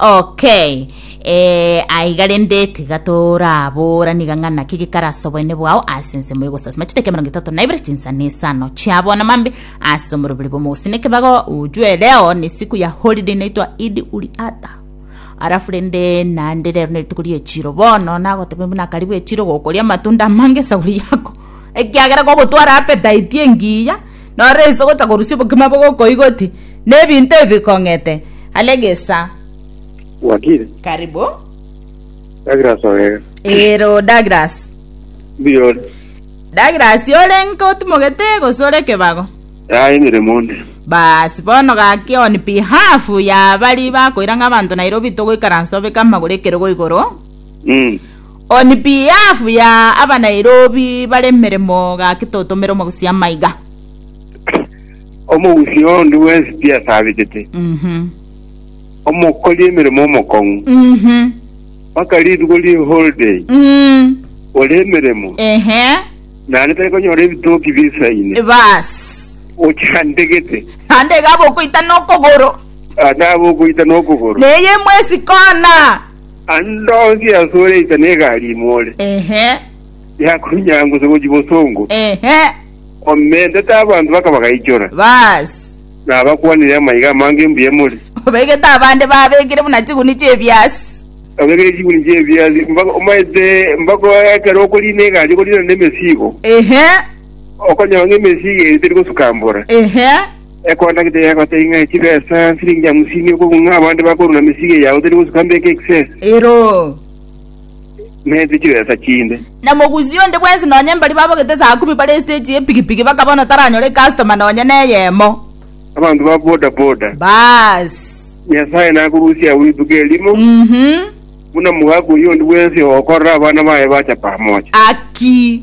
Okay. Eh, aiga rende tiga torabora niga ng'a naki gikarasa oboene bwao ase ensemo y'ogosasima chidaka emerongo etato na ibere chinsana isano chia bono mambe ase omoroberi bw'omogusini ekebago ujue leo ni siku ya holiday inaitwa idi uli ata arafu rende naende rero nerituko riechiro bono nagotebe buna karibu echiro gokoria amatunda amange esaguri yako ekiagera gogotwara appetite engiya Noro ense ogotakorusia obokima bogokoigoti, na ebinto ebi bikong'ete are gesa. Wakiri. Karibu. Douglas Ogega. Ero Douglas. Mbiyore. Douglas ore nka otimogete gose ore kebago? Yaye emeremo onde. Basi bono gaki on behalf ya bari bakoira ng'a abanto Nairobi togoikaransa tobeke amagoro ekerogo igoro. Mm. On behalf ya aba Nairobi bare emeremo gaki totomere omogusi amaiga. Omogusi onde bwensi tiasabetete, Mhm. omokori emeremo omokong'u, Mhm. mpaka rituko rie holiday Mm. ore emeremo, Ehe. naende tari konyora ebitoki bisaine, Bas. ochandegete, Naende iga bokoita nokogoro. naende aba okoita nokogoro. Neye mwesi kona. Ande onsi ase ore inse na egari ime ore. Ehe. Yakonyangusa gochia bosongo. Ehe. Omentete abanto baka bagaichora. Baas. Na abakwanire amaiga amange embuya emori. Obegete abande babekire buna chiguni chi'ebiasi. Obegire chiguni chi'ebiasi mpaka omaete mpaka ekero okorina egari okorina nemesigo. Ehe. Okonyora ng'a emesigo eye teri gosukambora. Ehe. Ekonda gete yegotei ng'a chibesa nsiringi yamusini okogwa ng'a abande bakoruna mesige yao teri gosuka mbeke ekisese, Ero. na ete chibesa chinde. Na mogusi onde bwensi nonye mbari babogete saa kumi bare stage ye pigipigi bakabona taranyore ecustomer nonye neyemo. Abanto ba boda boda. Baas. Nyasaye nakorusie agwo rituko erimo, Mhm. buna mogaka oyio ondi bwensi ogokorera abana baye bacha pamoja. Aki.